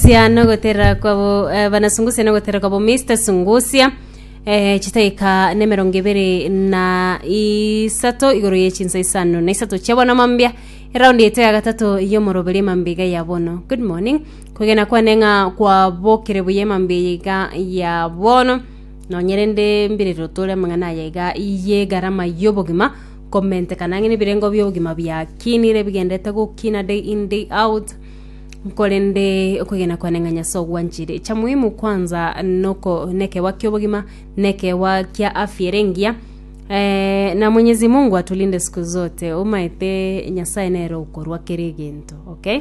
Sia no goterera kwabo eh, banasungusia no goterera kwabo Mr Sungusia eh, chitaika ne merongo ibere na isato igoro ye chinsa isano na isato chia bono mambia eraundi yeto ya gatato yomoroberi emambiga ya bono good morning kogena kwane ng'a kwabokire buya emambiga ya bono nonyerende mbirero tore amang'ana aya iga ye garama yobogima komentekana ang'e nebirengo biobogima biakinire bigendete gokina day in day out Korende okwegena kwane ng'a Nyasae ogwanchire. Cha muhimu kwanza noko nekewa ki'obogima, nekewa kia afya ere engiya. Eh, na Mwenyezi Mungu atulinde siku zote. Omaete Nyasae nere okorua kera egento. Okay?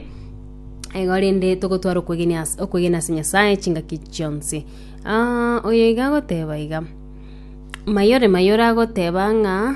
Igo rende togotwara okwegenia as- okwegena ase Nyasae chingaki chionsi. Ah, oyo iga agoteba iga, Mayore mayore agoteba ng'a.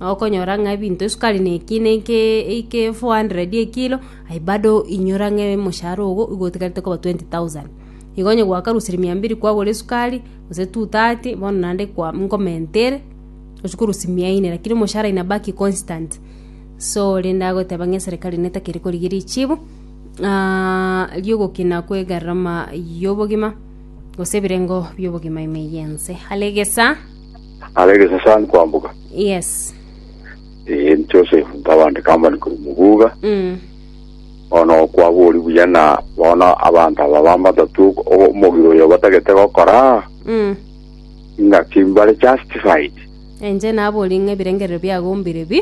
Okonyora ng'a ebinto esukari neke neke eike 400 ekilo, aye bado inyora ng'a omoshahara ogo igo otigarete koba 20,000. Igo onye gwakarusirie mia mbiri kwagora esukari, gose 230, bono naende kwa nkomenta ere, tochi korusia mia ine, lakini omoshahara inabaki constant. So rende agoteba ng'a eserekari netakeri korigia richibu, ng'aa ria ogokina kwe egarama ya obogima, gose ebirengo bia obogima ime ya ense. Are egesaa. Ara egesasani kwamboka. Yes. Eh, Joseph Ntabande Kambani kuri Mubuga. Mm. Bono okwabori buya na bono abanto aba bamatatu omogiro oyo batagete gokora Mm. ing'aki mbare justified. Enche nabori ng'a ebirengerero biagombire bi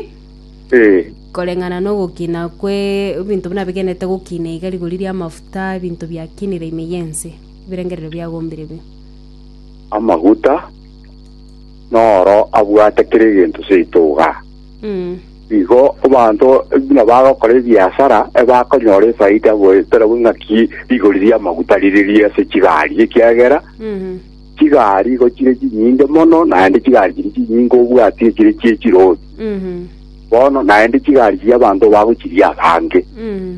Eh, koreng'ana n'ogokina kwe ebinto buna bigenete gokina iga rigori ri'amafuta ebinto biakinire ime y'ense ebirengerero biagombire bi amaguta, noro abwate kera egento seito iga. Mm. Igo abanto buna bagokora ebiasara ebakonyora efaida goeterabwo ng'aki rigori ri'amaguta rire rie ase chigari, ekiagera Mhm. chigari igo chire chinyinge mono, naende chigari chiri chinyinge obwati echire chie chirori Mhm. bono, naende chigari chi'abanto bagochiria abange. Mhm.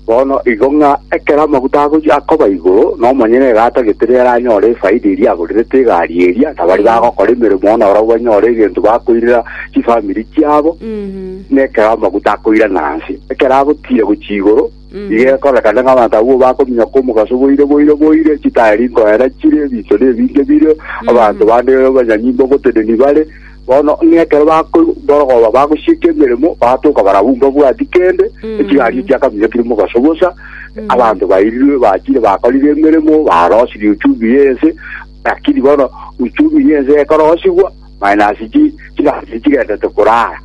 Bono igo ng'a ekero amaguta agochia akoba igoro, na omonyene egaata getiri ere anyore efaida eria agoriretwe egari eria, na baria bagokora emeremo oo nabarabwo banyore egento bakoirera chifamiri chiabo, na ekero amaguta akoirana inse. Ekero agotiira gochia igoro, igo ekorekana ng'a abanto abwo bakominyoka omogaso boire boire boire, chitaeri nkoera chire, ebinto nebinge bire, abanto bande abanyanyimbe ogoteneni bare, Bono ng'a ekero bakoigwa borogoba bagosieka emeremo, bagatoka barabwo mbabwati kende, echigario chiakaminyokire mobaso bosa, abanto bairirwe bachire bakorire emeremo, barosirie uchumi y'ense, lakini bono uchumi y'ense ekorosigwa, minus chi- chigario chigendete korara.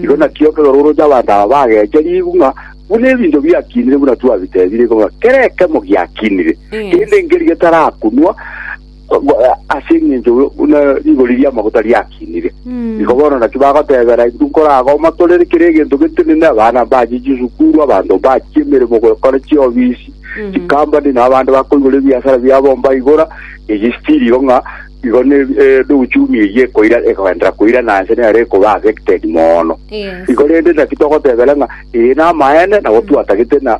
Igo nakio ekero oroche abanto aba bagecheriwu ng'a buna ebinto biakinire buna twabitebire igo ng'a kera ekemo giakinire, Mm. kende nkeri getarakunwa, ase eng'encho buna rigori ri'amaguta riakinire. Igo bono naki bagotebera intwe nkoragoma torere kera egento getenene, abana mbache chisukuru, abanto mbache emeremo gokora chiofisi, chikampani na abande bakoigora ebiasara biabo mbaigora, eye still igo ng'a igo ne eh, ne uchumi eye ekoira ekoenderera koira na nse nere ekoba affected mono. Yes. Igo rende naki togotebera ng'a eye namaene nabo twatagete na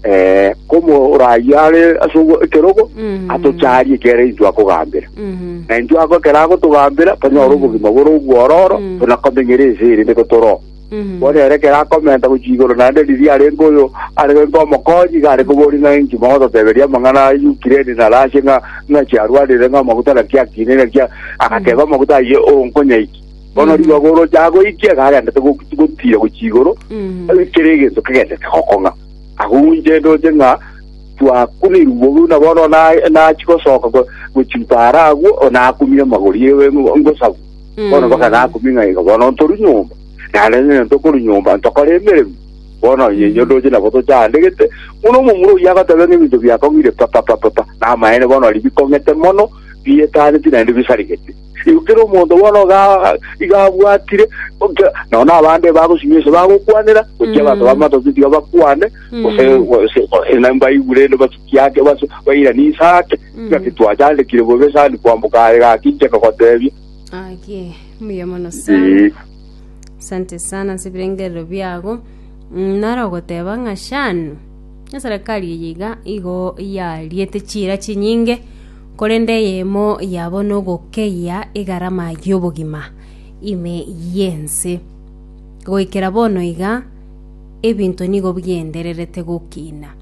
eh, komoraai are ase ogo- ekerogo Mhm. atocharie ekere intwe akogambera Mhm. na intwe ako ekero agotogambera tonyore obogima bore obwororo Mm. tonakomenyere ense ere niko toro Mhm. bono ere ekero akomenta gochia igoro naende riria arenge oyo arenge omokonyi iga are kobori ng'a inki mogototeberia amang'ana a ukraine na russia ng'a ng'a chiarwarire ng'a amaguta naki akine naki a- agateba amaguta ayio onkonyaiki Bono ribaga oroche agoikia iga agendete go- gotiira gochia igoro, kera egento kegendete gokong'a. Agounche ndoche ng'a twakunirwe buna bono na- nachia gosoka go- gochia mpaara agwo, o nakumie amagori ewe ngo- ngosabu. Bono mpaka nakumie ng'a iga bono ntorwe nyomba. Naende onye ntokorwa nyomba, ntokore emeremo. Bono onye inwe ndoche nabo tochandegete, buna omomura oyio agoteba ng'a ebinto biakong'ire pa pa pa pa pa, namaene bono riria bikong'ete mono, biyetaneti naende bisarigeti. Igo kera omonto bono iga iga abwatire, gokia nao nabande bagosinywa ase bagokwanera, gochia Mm. basoba amatoki tiga bakwane, gose Mm. gose gose na mbaigure ende batuki ake base bairanie inse ake, Mm. ngaki twachandekire bobe sani kwamboka aye gaki inche nkagotebia. Akie, mbuya mono sana. Eeh. Asante sana ase ebirengerero biago. Mm, nare ogoteba ng'a shanu, eserekari eye iga igo yariete chiira chinyinge Korende eyemo yabo nogokeyia egarama y'obogima ime y'ense. Goikera bono iga, ebinto nigo bigendererete gokina.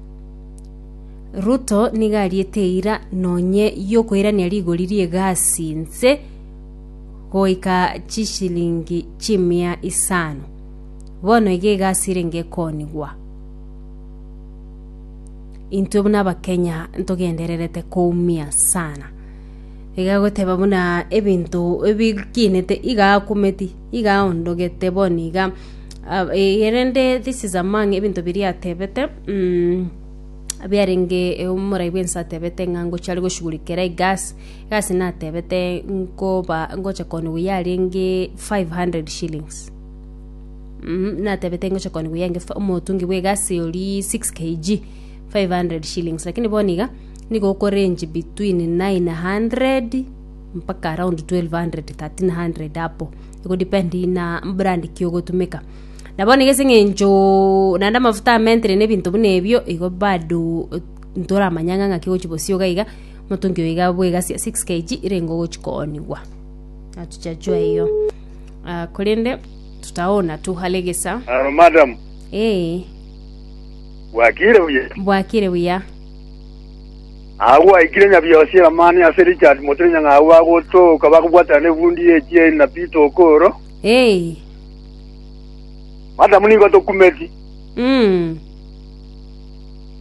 Ruto nigo ariete eira nonye yokoirania rigori ri'egasi inse goika chishilingi chimia isano. Bono iga egasi erenge ekonigwa. Intwe buna Abakenya ntogendererete koumia sana. Iga goteba buna ebinto ebikinete iga akumeti, iga aondogete bono iga. Ah, eh, erende this is among ebinto biria atebete, mm, biarenge eh, omorai bwense atebete ng'a ngochi are goshugurikera egasi, egasi natebete nkoba ngocha kooniwa yarenge 500 shillings. Mhm, natebete ingocha koni buya inge fa- omotungi bwa egasi ori 6 kg 500 shillings lakini bono iga nigo okorange between 900 mpaka around 1200 1300 apo egodepend na brand ki ogotumeka na bono iga ase eng'encho naende amafuta a mentry na ebinto buna ebio igo bado ntoramanya ng'a ng'aki ogochi bosio iga iga omotungi oyo iga bwa egasi ya 6 kg irengo ogochi koonigwa. Natotechwa eyo. Ah, korende tutaona tuhalegesa. Aro madam, Ee, bwakire buya. bwakire buya. Agwo aikire nyabiosi eramani ase Richard Motinya ng'agwo agotoka bakobwatana negundi ye chieri na Peter Okoro. Ee, Madam nigo tokumeti. mm,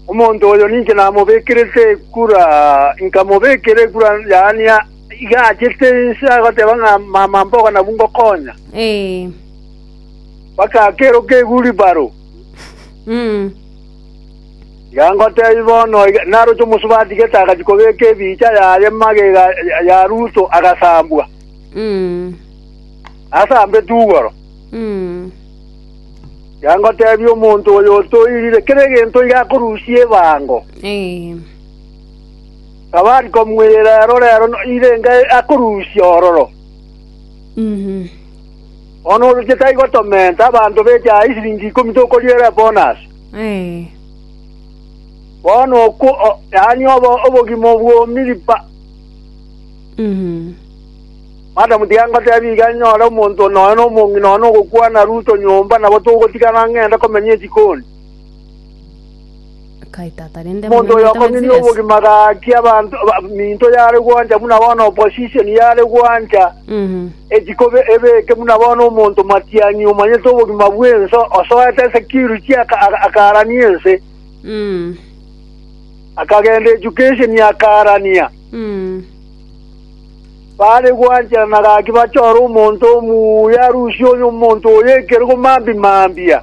Omonto oyo ninche namobekirete ekura, nkamobekera ekura yaani a- Iga achete inse agateba ng'a, Mama, mboka nabu ngokonya. Ee. Bakakeroka ewulibaro. Mm. Iga ngotebi bono, iga- naroche omosubati gete agachia kobeka ebiicha yaye magega ya- ya Ruto agasambwa. Mm. Asambe tugoro. Mm. Iga ngotebi omonto oyo otoirire kera egento iga akorusia ebango. Ee. Abari komwirira erorero irenge akorusia ororo. Bono oroche taigo tomenta abanto beche aa isiringi ikomi tokoriera ebonasi. Bono okwo o- yaani obo- obogima obw'omiripa. Madamu tiga ngotebie iga nyore omonto nonya nomong'ina nonya nogokwana Ruto nyomba nabo togotigana ng'ende komenya echikoni. Omonto oyo okomina obogima agaakia abanto eminto yare gwancha buna bono opposition yare gwancha echikobe ebeke buna bono omonto matianyi omanyete obogima bw'ense osoete security akarania ense akagenda education akarania bare gwancha na gaki bachore omonto omuya arusie omonto oyo ekero mambi mambia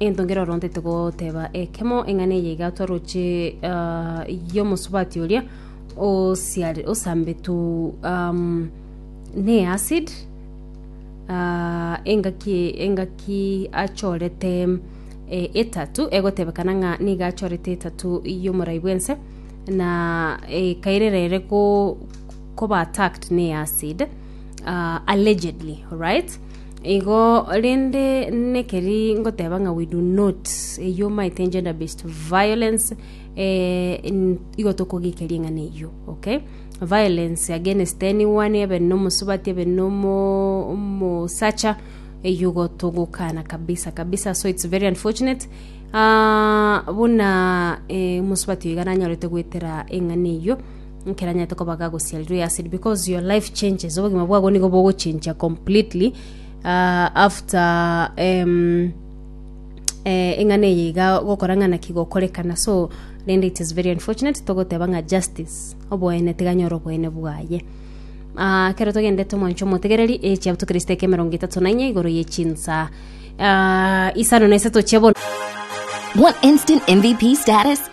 Entongero oro ntete goteba ekemo eng'ana eye igatwa roche ah, y'omosubati oria osiare- osambetu um, ne acid ah, engaki engaki achorete eh, etatu egotebekana ng'a nigo achorete etatu y'omorai bwense na eh, kairera ere ko- koba attacked ne acid ah, allegedly right Igo rende nekeri ngoteba ng'a we do not eyio omaete gender based violence eh, n- igo tokogikeri eng'ana eyio okay violence against anyone ebe nomosubati ebe nomo omosacha eyio igo togokana kabisa kabisa so it's very unfortunate ah, buna eh, omosubati oyo iga nanyorete goetera eng'ana eyio Nkeranyete kobaga gosiarirwe ase ri because your life changes obogima bwabo nigo bogochinchia completely ah, after em, eh, eng'ana eye iga gokora ng'ana ki gokorekana so rende it is very unfortunate togoteba ng'a justice oboene tiganyore oboene bwaye Ah, kero togendete omwancho omotegereri echiabuto kristo eke emerongo etato na inye igoro ye chinsa Ah, isano na isato chia bono Want instant MVP status?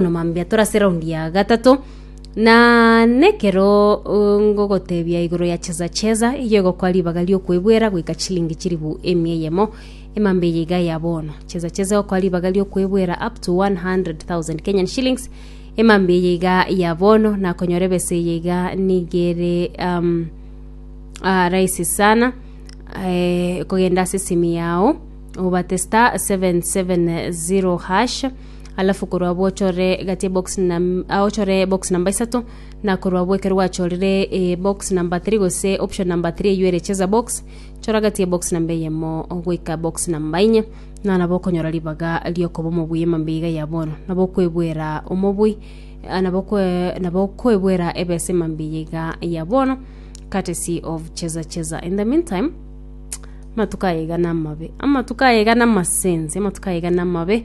Noma mbuya tore ase eraundi ya gatato, na nekero uh, ngogotebia igoro ya cheza cheza eyio egokwa ribaga riokwebwera goika chilingi chiribu emia eyemo emambe eye iga ya bono cheza cheza egokwa ribaga riokwebwera up to 100,000 Kenyan shillings emambe eye iga ya bono nakonyora ebesa eye iga nigere um, uh, rahisi sana eh, kogenda ase simu yao obate star 770 hash alafu korwa abwo ochore egati ebox nam- ah, ochore ebox namba isato na korwa abwo ekero gwachorire ebox namba 3 gose option namba 3 eywo ere cheza box chora egati ebox namba eyemo goika box namba inye na nabo okonyora ribaga riokoba omobui emambia iga ya bono nabo okwebwera omobui ah, nabo okwe- nabo okwebwera ebesa emambia eye iga ya bono courtesy of cheza cheza in the meantime amatuko aye iga namabe amatuko aye iga namasense amatuko aye iga namabe